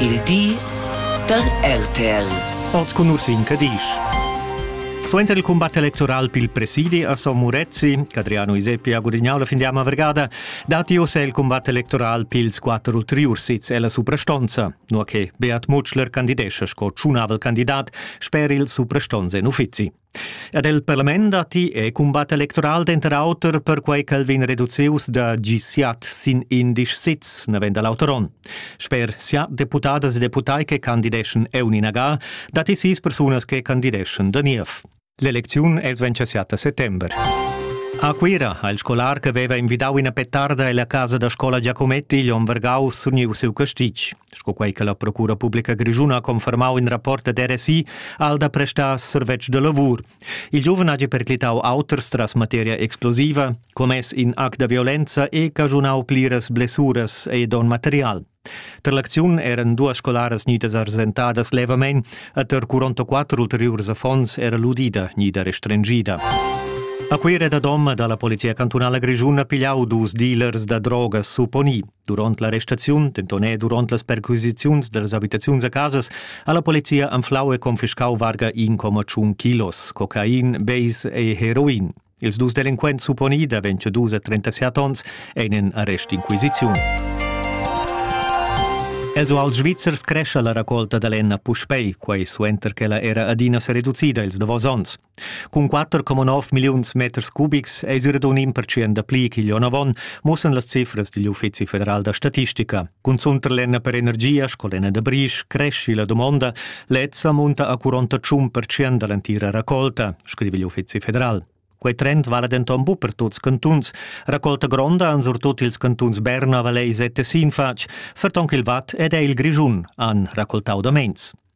il di da RTL. Oz cun Ursin Cadisch. Suenter il combat electoral pil presidi a Son Murezzi, Adriano Iseppi ha gudignau la findiama vergada, datti ossa il combat electoral pils quatter ulteriurs sits ella suprastonza, nur che Beat Mutschler candidescha sco tschunavel candidat sper il suprastonz en uffizi. Ed el parlament datti e cumbat electoral denter auter perquei ch'el vegn reducius da gisiat sin indisch sits, navend l'auter onn. Sper sia deputadas e deputai che candideschan Euni Nagal, datti sis persunas che candideschan da niev. L'elecziun els vegn siat a settember. A Cuira ha il scolar che veva invidau ina petarda ella casa da scola Giacometti igl onn vargau surniu siu castig. Sco quei che la Procura publica grischuna ha confermau in rapport ad RSI, ha el da prestar servetsch de lavur. Il giuven hagi perclitau auters tras materia explosiva, commess in act da violenza e caschunau pliras blessuras e don material. Tar l'acziun eran duas scolaras gnidas arsentadas levamein e tar 44 ulteriurs affons era l'udida gnida restringida. A Cuira da Dom dalla Polizia cantunala grischuna pigliau dus dealers da drogas supponì. Duront la restaziun, denton e duront las perquisiziuns dallas habitaziuns a casas, ha la polizia anflau e confiscau varga 1,1 kilos cocain, beis e heroin. Ils dus delinquents supponi da 22 a 37 onns ein en arrestinquisiziun. Els uals svizzers crescha la raccolta da lenna puspei, quei suenter che la era adina sereducida ils davos onns. Cun 4,9 milliuns meters cubics eis era un impertschient da pli ch'igl onn avon, muossan las cifras digl Uffizi federal da statistica. Cunzunt per lenna per energia sco lenna da brisch cresci la domonda, lezza munta a 41 percent dall'entira raccolta, scrive igl Uffizi federal. Quei trend vala denton bu per tuts cantuns. Raccolta gronda han surtut ils cantuns Berna, Vallais e Tessin fatg, ferton ch'il Watt ed è il Grischun han raccoltau da meins.